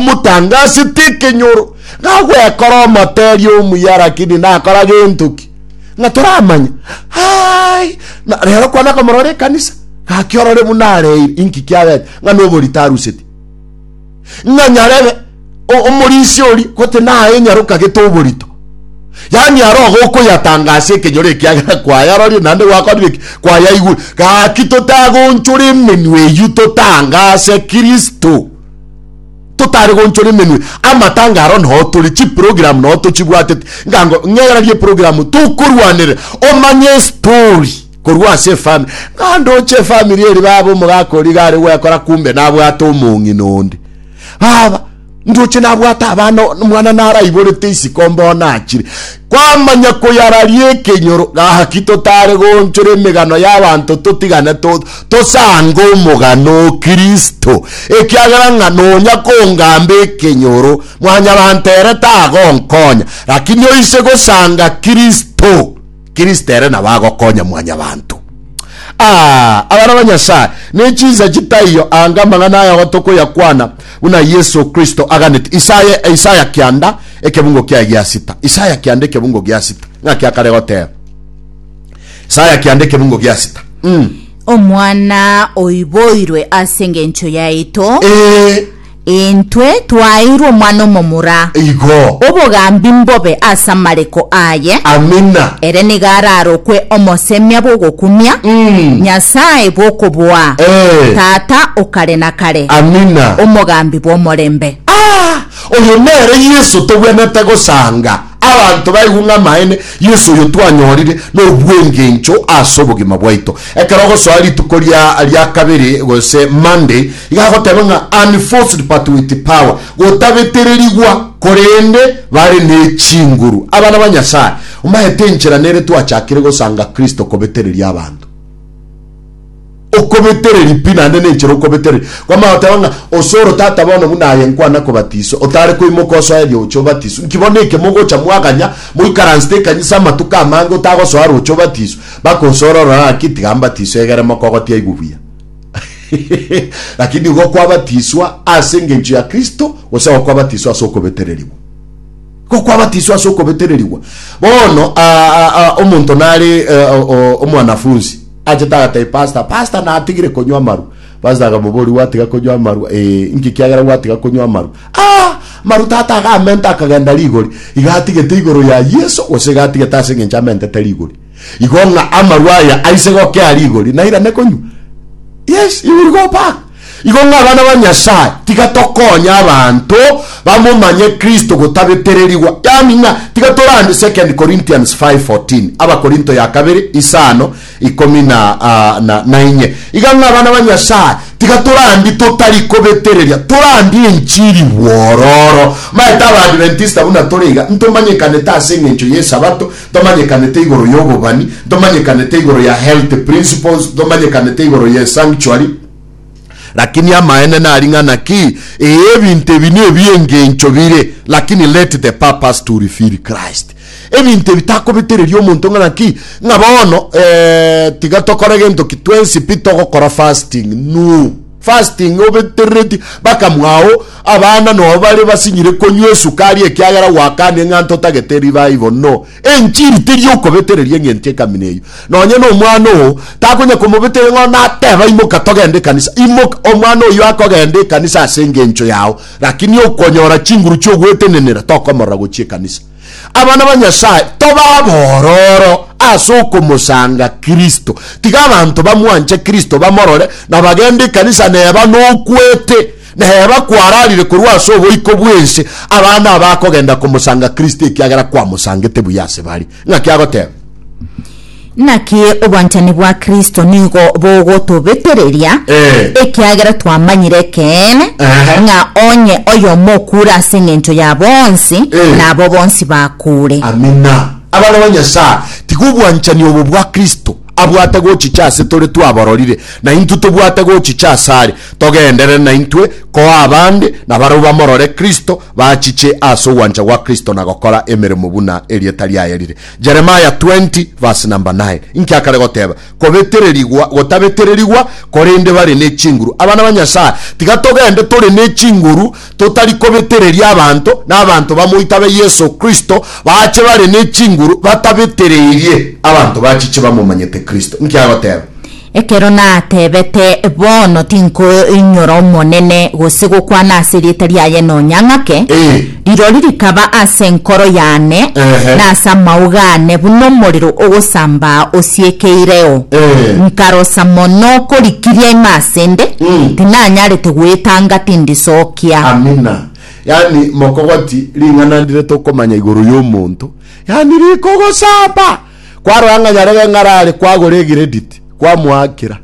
Omotanga ase tekenyoro, ng'a gwekora omoteria omuya lakini nakora gentoki, ng'a toramanya. Aai, na rero kwana komorora ekanisa, gaki orore buna areire, inki kiabete, ng'a noborito aruseti. Ng'a nyarebe omorisia oria gote naye nyaroka gete oborito. Yani aro iga okoyatanga ase ekenyoro ekiagera kwayarorie naende gwakorire ki? Kwayaigure. Gaki totagonchora emenwa eyio totange ase Kristo. totare gonchora emenwe amatanga aro nao tore chiprogram nao tochibwatete ngango ng'erarie program tokorwanere omanye story korwa ase efami ngandoche efamiri eri baba omogaka ori gare gwekora kumbe nabwate omong'ina onde baba ndoche nabwate abana mwana naraiborete isiko mbono achire Kwamanya koyararia ekenyoro, gaki totare goonchora emegano y'abanto totigane tosange omogano o Kristo, ekiagera ng'a nonya kongamba ekenyoro mwanyabanto ere tagonkonya, lakini oise gosanga Kristo, Kristo ere nabo agokonya mwanyabanto. Aa, abana ba Nyasae, ne chinsa chitaiyo anga amang'ana aya gotokoyakwana, Buna Yeso Kristo aganeti Isaya, Isaya kianda ekebungo kiaye gia sita, Isaya kianda ekebungo gia sita, ng'aki akare goteba. Isaya kianda ekebungo gia sita. Mm. Omwana oiboirwe ase engencho yaito, Eh, intwe twaeirwe omwana omomura, igo. obogambi mbobe ase amareko aye. Amina. Ere nigo ararokwe omosemia bw'ogokumia, Mm. Nyasae bw'okoboa, Eh. Tata o kare na kare. Amina. Omogambi bw'omorembe. Aa! Oyo nere Yeso togwenerete gosanga. Abanto baigwe ng'a amaene, Yeso oyo twanyorire nobwengencho ase obogima bwaito. Ekero ogosoa rituko ria ria kabere gose Monday, iga agoteba ng'a unforced but with power, gotabetererigwa, korende bare ne chinguru. Abana ba Nyasae, omaete enchera nere twachakire gosanga Kristo kobetereria abanto. okobetereria pi naende nenchera okobetereria. Kwamanya goteba ng'a ose oro tata bono buna aye nkwana kobatiswa, otare koimoka osoe rioche obatiswe, inki bono ekemo ogocha mwaganya moikaransete ekanisa amatuko amange otagosoa roche obatiswe, bakosoera orore ng'aki tiga mbatiswe egere moka ogotia aigwe buya. Lakini nigo kwabatiswa ase engencho ya Kristo gose nigo kwabatiswa ase okobetererigwa? Nigo kwabatiswa ase okobetererigwa. Bono omonto nare omwanafunsi. Achete agatebia pastor, pastor natigire konywa amarwa. Pastor akamoboria, gwatiga konywa amarwa? Ee, inki kiagera gwatiga konywa amarwa? Ah! Amaru tata iga amente akagenda rigori. Iga atigete igoro ya Yeso gose iga atigete ase engencho amentete rigori. Igo ng'a amarwa aya aise gokea rigori nairane konywa. Yes, he will go back. Igo ng'a abana ba Nyasae, tiga tokonye abanto bamomanye Kristo gotabetererigwa, yaani ng'a tiga torande 2 Corinthians 5:14, Abakorinto ya kabere isano, ikomi na, ah, na, na inye. Iga ng'a abana ba Nyasae, tiga torandi totari kobetereria, torandie enchiri bwororo. Maete Abaadventista buna tore iga, ntomanyekanete ase engencho y'Esabato, Ntomanyekanete igoro y'obobani, ntomanyekanete igoro ya health principles, ntomanyekanete igoro ye sanctuary, lakini amaene nari ng'a naki, ee ebinto ebi nebi engencho bire, lakini let the purpose to reveal Christ. Ebinto ebi takobetereria omonto ng'a naki, ng'a bono ee tiga tokore gento ki twensi pi togokora fasting, no. Fasting obeterereti bakamwao abana nobo bare basinyire konywa esukari ekiagera gwakane ng'a ntotagete revival no enchiri teri okobetereria ng'encho ekamina eyio nonye nomwana oo takonya komobeteria ng'a nateba imoka togende ekanisa imoka omwana oyio akogenda ekanisa asengencho yao rakini okonyora chinguru chiogwetenenera tokomorora gochia ekanisa Abana ba Nyasae, tobe abororo ase okomosanga Kristo. Tiga abanto bamwanche Kristo, bamorore, na bagende ekanisa neba nokwete, neba kwararire korwa ase oboiko bw'ense. Abana aba akogenda komosanga Kristo ekiagera kwamosangete buya ase bare. Ng'aki agoteba? Naki obwanchani bwa Kristo nigo bogotobetereria, Eh. ekiagera twamanyire ekeene, Ehe. ng'a onye oyomo okuure ase engencho ya bonsi, Eh. nabo bonsi bakuure. Amina. Abana ba Nyasae, tiga obwanchani obo bwa Kristo abwate gochicha ase tore twabororire, na intwe tobwate gochicha asare, togenderere naintwe koa abande na barabwo bamorore Kristo, bachiche ase ogwancha gwa Kristo na gokora emeremo buna erieta riaye rire. Jeremiah 20 verse number 9, Inki akare goteba? Kobetererigwa, gotabetererigwa, korende bare ne chinguru. Abana ba Nyasae, tiga togende tore ne chinguru, totari kobetereria abanto, na abanto bamoita be Yeso Kristo bache bare ne chinguru batabetereirie abanto bachiche bamomanyete Kristo. Inki agoteba? Ekero nateebete, Bono tinkoinyora Omonene, gose gokwana ase erieta riaye nonya ng'ake, Eh. rirori rikaba ase enkoro yane Ehe. na ase amauga aane buna omorero ogosambaa osiekeireo. Eh. Nkarosa mono korikiria ime ase 'nde, Mm. tinanyarete goetanga tindisookia. Amina. Yaani mokogoti ring'ana ndire tokomanya igoro y'omonto, yaani rikogosamba. Kwarora ng'a nyarebe ng'arare kwagora egirediti, kwamoakera.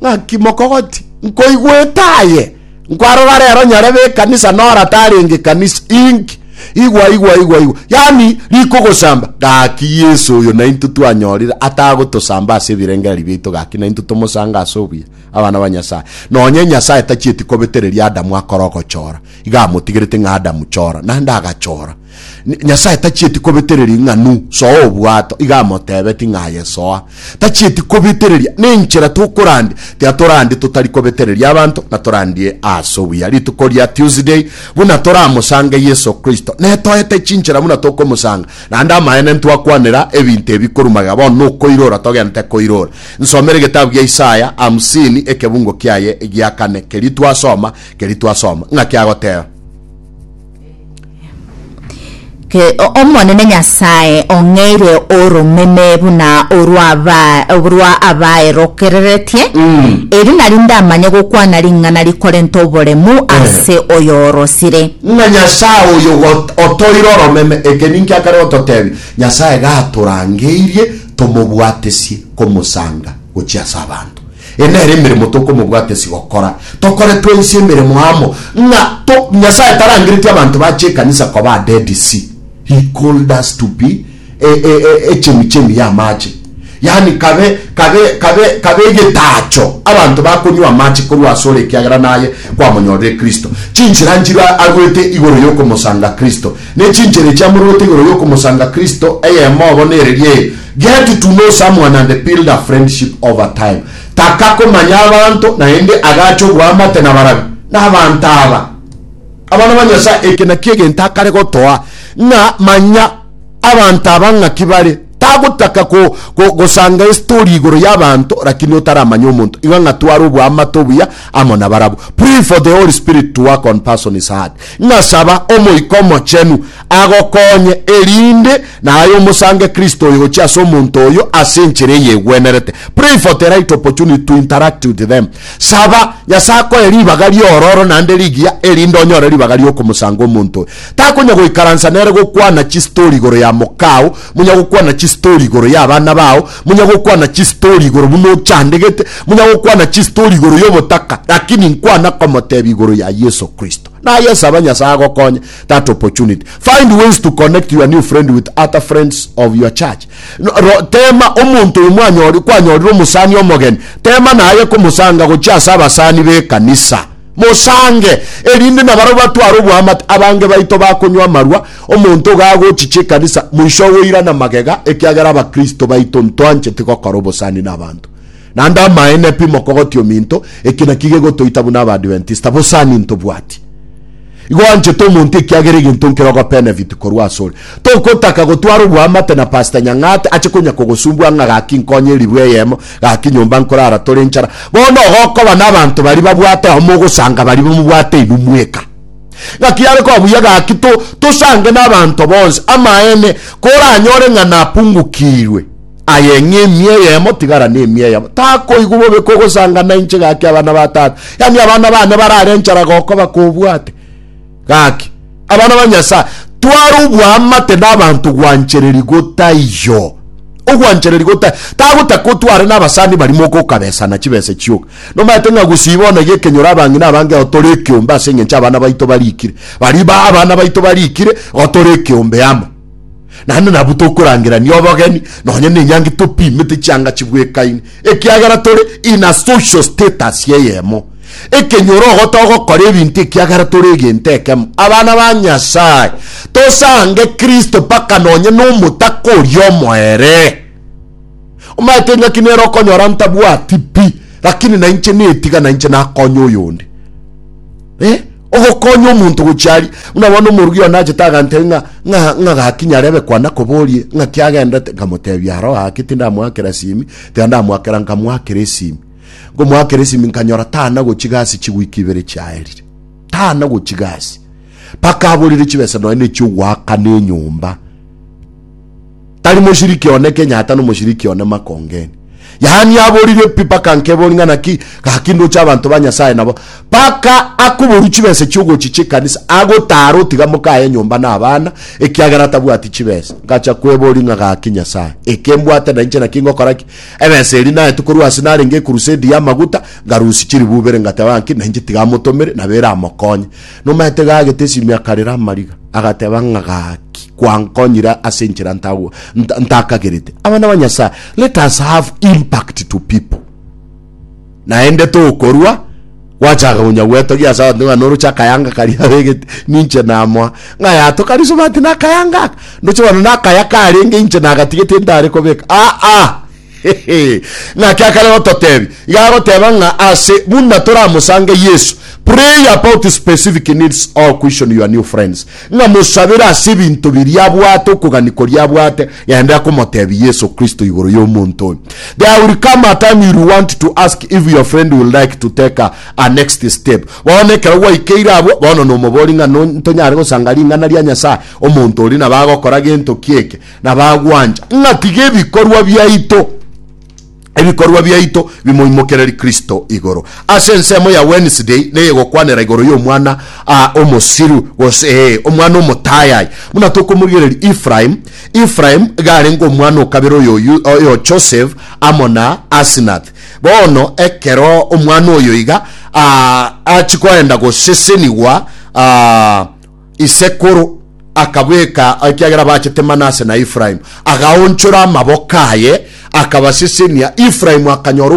Ng'aki mokogoti? Nkoigwete aye. Nkwarora rero nyarebe ekanisa nora tarenge ekanisa. Inki? Igwa, igwa, igwa, igwa. Yani, rikogosamba. Gaki Yesu oyo nainto twanyorire atagotosamba ase ebirengererio biaito gaki nainto tomosange ase obuya, abana ba Nyasae. Nonye Nyasae tachieti kobetereria Adamu akore ogochora, iga amotigerete ng'a Adamu chora, naende agachora. Nyasae tachieti kobetereria ng'anu soa obwato, iga amotebeti ng'a aye soa. Tachieti kobetereria nenchera tokorandia, tiatorandie totari kobetereria abanto na torandie ase obuya. Rituko ria Tuesday buna toramosange Yeso Kristo, netoete chinchera buna tokomosanga. Naende amaene ntwakwanera ebinto ebi korwa magega, bono nokoirora togenete koirora. Nsomere egetabu gia Isaya hamsini ekebungo kiaye egia kane. Keria twasoma, keria twasoma ng'a kiagoteba. Omonene Nyasae ong'eire oromeme buna orwa abaerokereretie, erio nario ndamanye gokwana ring'ana rikorenta oboremu ase oyorosire. Ng'a Nyasae oyo otoire oromeme, eke ninki akare gototebia, Nyasae gatorangeirie tomobwatesie komosanga gochia ase abanto. Eye nere emeremo tokomobwata ase gokora, tokore twaise emeremo amo, ng'a to, Nyasae tarangeretie abanto bache ekanisa koba a Dead Sea. He called us to be e, e, e, echemichemi y'amache, yaani kabe, kabe, kabe, kabe egetaacho abanto bakonywa amache korwa ase ore ekiagera naye kwamonyorire Kristo. Chinchera nchirwe a, agwete igoro y'okomosanga Kristo, Ne chinchera echi amorwete igoro y'okomosanga Kristo, eyemo obo nereria eye, Get to know someone and build a friendship over time. Taka komanya abanto naende agache oboamate nabarabwo nabanto aba, abana ba Nyasae. Eke nakio egento akare gotoa, ng'a manya abanto aba ng'aki bare. Tagotaka gosanga estori igoro y'abanto lakini otaramanya omonto, iga ng'a tware oboamate obuya amo nabarabwo. Pray for the Holy Spirit to work on person's heart. Ng'a saba Omoika Omochenu agokonye, erinde naye omosange Kristo oyo gochia ase omonto oyo ase enchera eyegwenerete. Pray for the right opportunity to interact with them. Saba Nyasae akoe ribaga ri'ororo naende rigiya erinde onyore ribaga ri'okomosanga omonto oyo. Takonya goikaransa nere gokwana chistori igoro ya mokao, monya gokwana chistori igoro y'abana bao, Monyagokwana chistori igoro buna ochandegete, monyagokwana chistori igoro y'obotaka, lakini nkwana komotebia igoro ya Yeso Kristo. Naye saba Nyasaye agokonye that opportunity. Find ways to connect your new friend with other friends of your church. Ro, tema omonto oyo mwanyori, kwanyorire omosani omogeni, tema naye komosanga gochia ase abasani b'ekanisa. Mosange, erinde nabarabwo batware oboamate, abange baito bakonywa amarwa, omonto iga agochicha ekanisa, moiso ogoirana magega, ekiagera abakristo baito ntwancheti gokora obosani nabanto. Naende amaene pi mokogotia ominto, eki nakio gegotoita buna Abaadventista, bosani ntobwati. Igo anchete omonto ekiagera egento nkere ogobenefit korwa asore. Tokotaka gotwara oboamate na Pastor Nyang'ate ache konya kogosumbua ng'a gaki nkonye eribwe eyemo, gaki nyomba nkorara tore enchara. Bono igo okoba nabanto baria babwate oyomo ogosanga baria bamobwate inwe mweka. Ng'aki yare koba buya gaki tosange nabanto bonsi. Amaene, koranyore ng'a napungukirwe. Aye ng'a emia eyemo tigara nemia eyemo. Takoigwa bobe kogosanga nainche gaki abana ba tata. Yani abana bane barare enchara gokoba kobwate. Gaki. Abana ba Nyasaye. Tware obwamate nabanto gwanchereri gotaiyo. Ogwanchereri gotai. Tagotaka otware nabasani barimo gokabesana chibese chioka. Nomaete ng'a gosiba ona gekenyoro abang'ina abange otore ekeombe ase engencho abana baito barikire. Bari ba abana baito barikire otore ekeombe amo. Naende nabwo tokorangerania obogeni nonye nenyangi topimete chianga chibwekaine, ekiagera tore in a social status eyemo. Ekenyoro ogo togokora ebinto ekiagera tore egento ekemo. Abana ba Nyasae, tosange Kristo mpaka nonye nomotaka oria omoere. Omaete ng'aki nere okonyora ntabwati pi, lakini nainche netiga nainche nakonye oyonde. Eh? Ogokonya omonto gochia aria. Buna bono omorugi one achete agantebi ng'a ng'a ng'a gaki nyarebe kwana koborie ng'aki agendete, nkamotebia aro gaki tindamoakera esimi, tiga ndamoakera nkamoakera esimi. Nkomoakera esimi nkanyora tana gochi gasi chigwiki ibere chiaerire. Tana gochi gasi. Paka aborire chibesa nonya ne chiogoakana enyomba. Tari moshiriki one Kenya hata nomoshiriki one makongeni. Yaani aboririe pi paka nkebori ng'a naki gaki ndoche abanto ba Nyasaye nabo. Paka akoboru chibesa chiogochi chikanisa agotara otiga mokaye enyomba na abana ekiagera tabwati chibesa. Ngacha kwebori ng'a gaki Nyasaye eke mbwate na inche naki ngokora ki? Ebesa eri naete korwa ase narenge ekurusedi ya amaguta ngarusi chiribu ibere ngateba ng'a nki na inche tiga amotomere nabo ere amokonye. Nomaete gagete esimi akarera amariga, agateba ng'a gaki, kwankonyire ase enchera ntagwa nta- ntakagerete. Abana ba Nyasaye, let us have impact to people. Naende tokorwa gwachaka konya gwetogia ase abanto ng'a noroche akayanga karia abegete ninche namoa ng'a yato kari smart na akayanga aka ndoche bono nakaya karenge inche nagatigete ntare kobeka aa Naki akare gototebi, iga agoteba ng'a ase buna toramosange Yesu, pray about specific needs or question your new friends. Ng'a mosabere ase ebinto biria abwate, okogani koria abwate, genda komotebi Yesu Kristo igoro y'omonto oyo. There will come a time you'll want to ask if your friend will like to take a, a next step. Bono ekero gwaikeire abwo, bono nomobori ng'a no, ntonyare gosanga ring'ana ria Nyasaye, omonto oria nabo agokora gento ki'eke, na bagwancha ng'a tiga ebikorwa biaito ebikorwa biaito bimoimokererie Kristo igoro. Ase ensemo ya Wednesday neyegokwanera igoro y'omwana ah, omosiru gose ee, omwana omotayayi buna tokomorigereria Ephraim. Ephraim garenge omwana okabere oyo Yu- oyo Joseph amo na Asinath. Bono ekero omwana oyo iga ah, achikoenda gosesenigwa ah, isekuru akabweka ekiagera bachete Manase na Efraimu, agaonchora amaboko aye akabasisinia, Efraimu akanyora